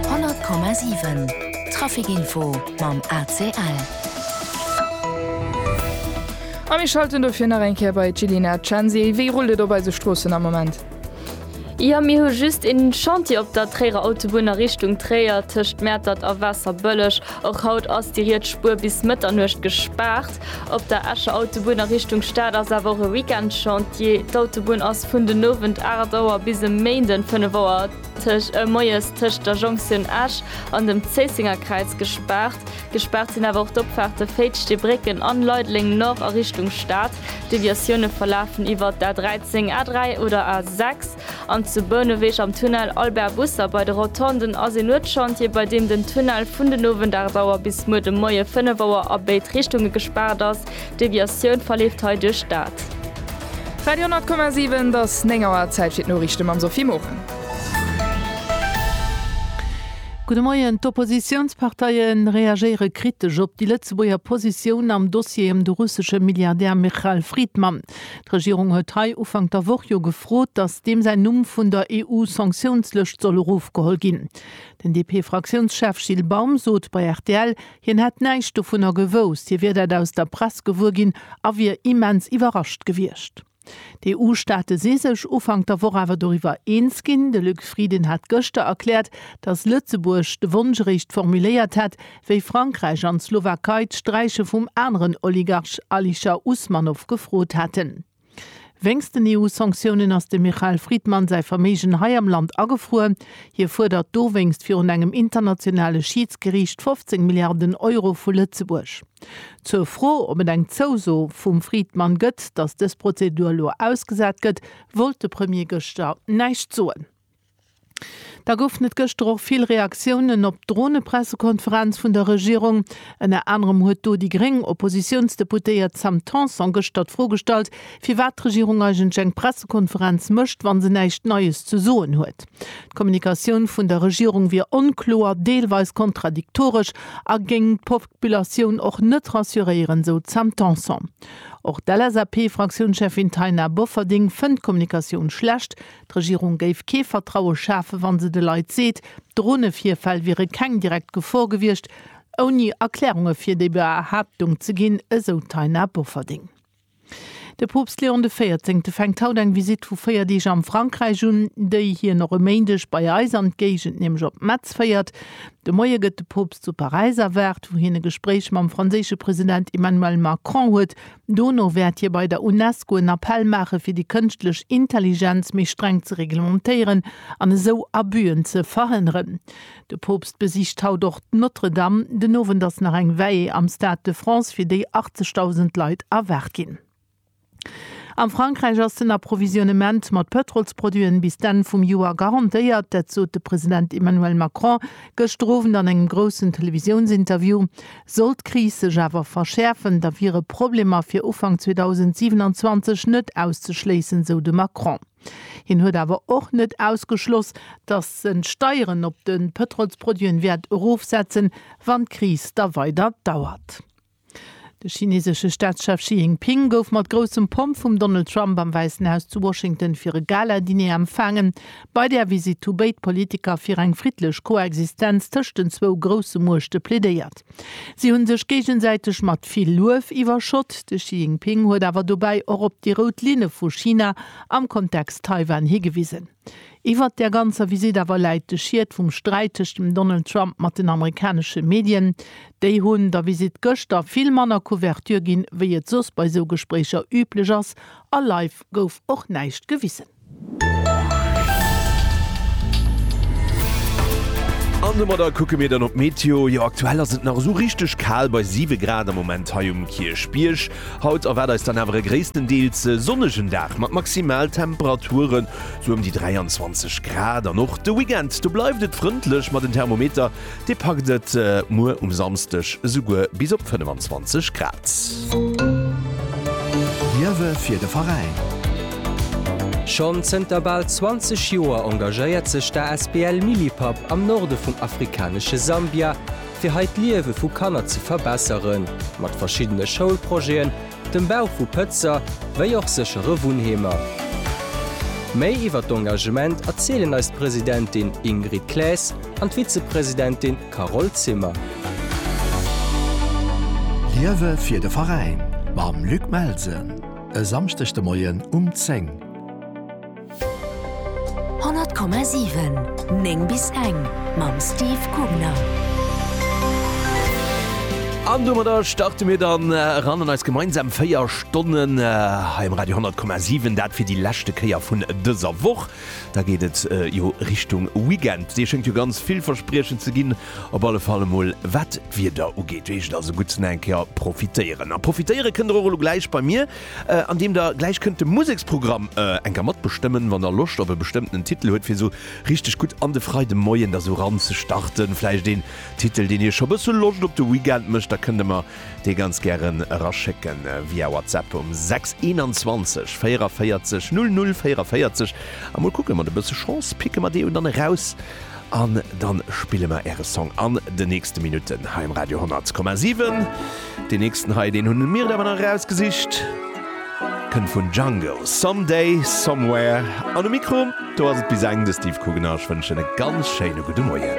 100,7 Trafikinfo mam ACL. A mir schalten dofir nach eng Kéier bei d'Jillina Cenzi. Wéi rullt et op eise Stroossen am Moment? Jo, mir hu just e Chantier op der Tréierer Autobunn a Richtung Tréier, tëscht Mäertert a Waasserbëlleg. Och haut ass déi riets Spuer bis Mëtternuecht gespaart. Op der Escher Autobunn a Richtung Stad ass awer och e Weekend-Chantier. D'Autobunn ass vun den Owend 8 Auer bis e Méinden 5 Auer moies tëscht der Jonktioun Esch an dem Zéisséngerkräiz gespaart. Gespaart sinn awer och d'Opfaarte Féitschdebrécken an Leideleng Nord a Richtung Stad. D'Deviatioune verlafen iwwer d'A13, A3 oder A6. An zu Bouneweg am Tunnel Albert Busser bei de Rotonden ass een Nuetschantier, bei deem den Tunnel vun den Owend 8 Auer bis muer de Moie 5 Auer a béid Richtunge gespaart ass. D'Deviatioun verleeft hei duerch dat. Radio 10,7, et ass 9 Auer, Zäit fir d'Noriichte mam Sophie Morang. Gudde Moien, D'Oppositiounsparteie reagéiere kritesch op déi Lëtzebuerger Positioun am Dossier ëm de russesche Milliardär Michal Fridman. D'Regierung huet hei Ufank der Woch jo gefrot, datt deem säin Numm vun der EU-Sanktiounslëscht soll erofgeholl ginn. Den DP-Fraktiounschef Gilles Baum sot bei rtl, hien hätt näischt dovunner gewousst, hie wier dat aus der Press gewuer ginn a wier immens iwwerrascht gewiescht. D'EU-Staate si sech Ufank der Woch awer doriwwer eens ginn. De Luc Frieden hat gëschter erkläert, datt Lëtzebuerg de Wonsch eréischt formuléiert hätt, wéi Frankräich an d'Slowakei d'Sträiche vum aneren Oligarch Alisher Usmanov gefrot haten. Wéinst den EU-Sanktiounen ass dem Michael Fridman säi Verméigen hei am Land agefruer. Hie fuerdert dowéinst virun engem internationale Schiidsgeriicht 15 Milliarden Euro vu Lëtzebuerg. Zur Fro, ob et eng Zouso vum Fridman gëtt, datt dës Prozedur elo ausgesat gëtt, wollt de Premier gëschter näischt soen. Da goufen et gëschter och vill Reaktiounen op d'Dronepressekonferenz vun der Regierung. Ënner anerem huet do déi gréng Oppositiounsdeputéiert Sam Tanson gëschter d'Fro gestallt, firwat d'Regierung eigentlech eng Pressekonferenz mécht, wa se näischt Neies ze soen huet. D'Kommunikatioun vun der Regierung wier onkloer, deelweis kontradiktoresch a géing d'Populatioun och net rassuréieren, esou d'Sam Tanson. Och d'LSAP-Fraktiounscheffin Taina Bofferding fënnt d'Kommunikatioun schlecht, D'Regierung géif kee Vertraue schafen, wa se de Leit seet, Dronevirfäll wiere keng direkt Gefor gewiescht, ouni Erklärunge fir déi Behaaptung ze ginn, esou d'Taina Bofferding. De Poopst Leon de Véierzéngte fänkt haut eng Visitt vu 4 Deeg am Frankräich un, déi hien och e Méindeg bei eis an d'Géigend, nämlech op Metz féiert. De Moie gëtt de Poopst zu Paräis erwaart, wou hien e Gespréich mam franséische President Emmanuel Macron huet. Dono wäert hie bei der UNESCO en Appell maache fir déi kënschtlech Intelligenz méi streng ze reglementéieren an esou Abüen ze verhënneren. De Poopst besicht haut och d'Notre-Dame. Den Owend ass nach eng Veillée am Stade de France, fir déi 80.000 Leit erwaart ginn. A Frankräich ass den Approvisionement mat Pëtrolsproduiten bis d'Enn vum Joer garantéiert. Dat sot de President Emmanuel Macron gëschter Owend an engem groussen Televisiounsinterview. Sollt d'Kris sech awer verschäerfen, da wiere Problemer fir Ufank 2027 net auszeschléissen, sou de Macron. Hien huet awer och net ausgeschloss, datt en d'Steieren op de Pëtrolsproduiten wäert erofsetzen, wann d'Kris da weider dauert. De chinesesche Staatschef Xi Jinping gouf mat groussem Pomp vum Donald Trump am Wäissen Haus zu Washington fir e Gala-Diner empfaangen. Bei där Visitt hu béid Politiker fir eng friddlech Koexistenz tëscht den zwou grousse Muechte plädéiert. Si hu sech géigesäiteg mat vill Luef iwwerschott. De Xi Jinping huet awer dobäi och op déi rout Linne vu China am Kontext Taiwan higewisen. Iwwert där ganzer Visitt awer läit de Schiet vum Sträit tëscht dem Donald Trump mat den amerikanesche Medien. Déi hunn der Visitt gëschter vill manner Couverture ginn, wéi et soss bei esou Gespréicher üblech ass. A live gouf och näischt gewisen. An domadder kucke mir dann op d'Meteo. Jo, aktuell ass et nach esou richteg kal, bei 7 Grad am Moment hei um Kierchbierg. Haut erwaart eis dann awer e gréisstendeels sonnegen Dag mat Maximaltemperaturen esou ëm déi 23 Grad. An och de Weekend do bleift et frëndlech, ma den Thermometer Dee packt et muer um Samsdeg esouguer bis op 25 Grad. Liewe fir de Veräin! Schonn zënter bal 20 Joer engagéiert sech d'ASBL Millipap am Norde vum afrikanesche Sambia, fir hei d'Liewe vu Kanner ze verbesseren, mat verschiddene Schoulprojeten dem Bau vu Pëtzer wéi och séchere Wunnheemer. Méi iwwer d'Engagement erzielen eis d'Presidentin Ingrid Claes an d'Vizepresidentin Carole Zimmer. Liewe fir de Veräin mam Luc Melsen e Samschdeg de Moien um 10. 100,7 9 bis eng mam Steve Gubner. An domadder starte mir dann äh, ran an eis gemeinsam véier Stonnen äh, hei im Radio 10,7 dat fir die lächte Kéier vun dëser Woch. Da geht et äh, jo Richtung Weekend. Dir schenkt jo ganz vill Verspriechen ze ginn. Op alle Falle mol wat d'Wieder ugeet, wéi ech also gutzen eng Kéier profitéieren. A profitéiere kënnt der och gleich bei mir. an deem der gläich kënnt de Museksprogramm enker matbestëmmen, wann der Loscht op e bestëmmtenen Titel huet, fir esou richteg gutt an de Freidemoien da sou ranzestarten. Vläicht een Titel, deen iech scho bësse Loscht op de Weekend mécht, da kënnt der mer dee ganz gären eraschécken via WhatsApp um 6 21 44 00 44 a mol kucken, mat e bësse Chance picke mer dee jo dann eraus. An dann spille mer äre Song an den nächsten Minuten hei um Radio 100,7. Deen nächsten hei, deen hunn mir awer nach erausgesicht, kënnt vun Django, Some Day, Somewhere. An um Mikro do ass et bis eng de Steve Kugener. Ech wënschen e ganz schéine gudde Moien.